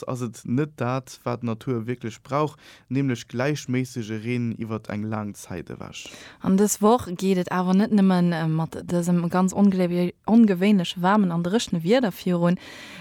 ass et net dat, wat d'Natur wierklech brauch, nämlech gläichméissege Reen iwwert eng laang Zäit ewech. An dës Woch geet et awer net nëmme mat dësem ganz ongewéinlech waarmen an dréchne Wieder virun,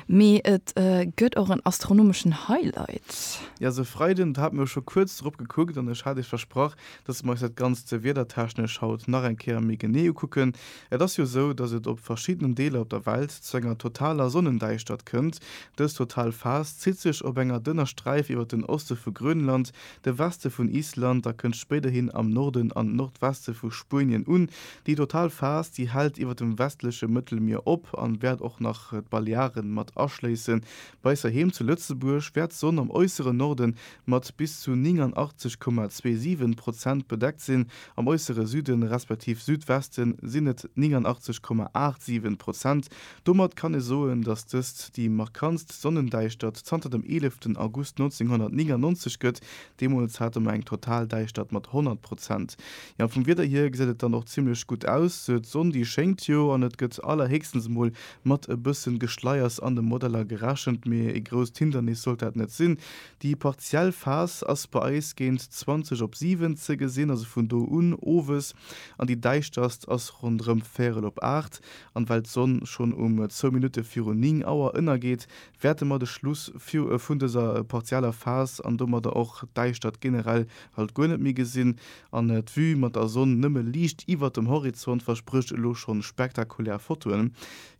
mee et gëtt och en astronomeschen Highlight. Jo, se Freiden, do hate mir scho kuerz drop gekuckt an ech hat iech versprach, dass mir eis dat Ganzt wierdertechnesch haut nach eng Kéier méi genee ukucken. Et ass jo sou, dass et op verschiddenen Deeler op der Welt zu enger totaler Sonnendäischtert kënnt. Dës total Phas zitt sech op enger dënner Sträif iwwer den Oste vu Grönland, de Weste vun Island a kënnt spéiderhin am Norden an Nordweste vu Spuenien un. Déi total Phas, déi hält iwwer dem westleche Mëttelmier op an wäert och nach d'Balearen mat aschléissen, Weiser Heem zu Lëtzebuerg wäert d'Sonn am äusseren Norde mat bis zu 89,27 Prozent bedeckt sinn, am äussere Süde respektiv Südweste sinn et 89,87 Prozent. Domat kann ee soen, datt dëst déi markantst Sonnendäischtert zanter dem 11 August 1999 gëtt, deemools hate mer eng total Däischtert mat 100 Prozent. Jo, vum Wieder hier gesäit et dann och zimmlech gutt aus, d'Sonn déi schéngt jo an et gëtt allerhéchstens emol Mat e bëssen Geschleiers an de Modeller gerechent, mee ee grousst Hindernis sollt dat net sinn. Déi partiell Phas ass bei eis géint 20 op 7 ze gesinn, also vun do un owes, an déi däischterst ass ronderëm véierel op 8. An well d'Sonn schonn um zwou Minutte virun 9 Auer ënnergeet, wäerte mer de Schluss vun dëser partieller Phas an domadder och d'Däischtert generell halt guer net méi gesinn, An d'Vue mat der Sonn nëmme liicht iwwert dem Horizont versprécht elo schonn spektakulär Fotoen.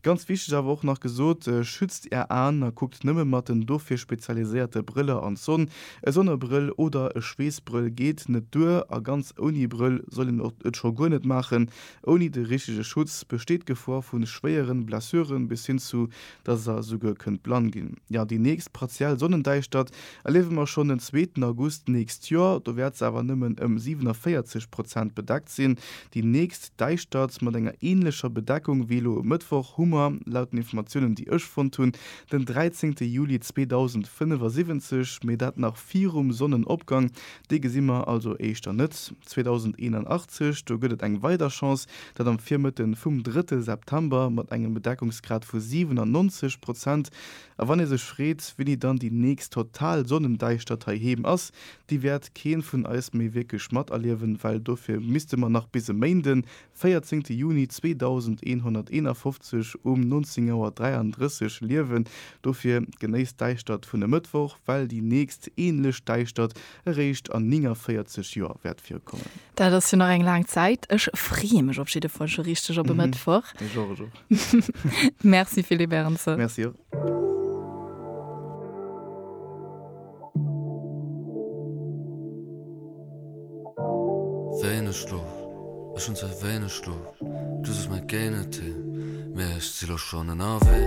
Ganz wichteg awer och nach gesot, Schützt är Aen a kuckt nëmme mat den dofir spezialiséierte Brëller an d'Sonn. E Sonnebrëll oder e Schweessbrëll geet net duer a ganz ouni Brëll soll een et scho guer net maachen. Ouni de richtege Schutz besteet d'Gefor vu schwéieren Blessuren bis hin zu dass se esouguer kënnt blann ginn. Jo, déi nächst partiell Sonnendäischtert erliewe mer schonn den zweeten August nächst Joer. Do wäert se awer nëmmen ëm 47 Prozent bedeckt sinn. Déi nächst Däischtert mat enger änlecher Bedeckung wéi elo e Mëttwoch hu mer, laut den Informatiounen, déi ech fonnt hunn, den 13. Juli 2075, mee dat nach virum Sonnenopgang, dee gesi mer also éischter net 2081, do gëtt et eng weider Chance, dat am Virmëtte vum drëtte September mat engem Bedeckungsgrad vu 97 Prozent. A wann ee sech freet, wéini dann déi nächst total Sonnendäischtert heiheem ass, déi wäert kee vun eis méi wierklech materliewen, well dofir misste mer nach bis e Méinden véierzéngte Juni 2151 um 19 Auer 33 Liewen, dofir genéisst d'Däischtert vun e Mëttwoch, well déi nächst änlech Däischtert eréischt an 49 Joer wäert virkommen. Dat ass jo nach eng laang Zäit. Ech freeë mech op jidde Fall scho richteg op e Mëttwoch. Ech och, ech och. Merci Philippe Ernzer. Merci. Wéineg Schlof, ech hunn ze wéineg Schlof, du sos mer géi net hin, mee ech si lo schonn ënnerwee.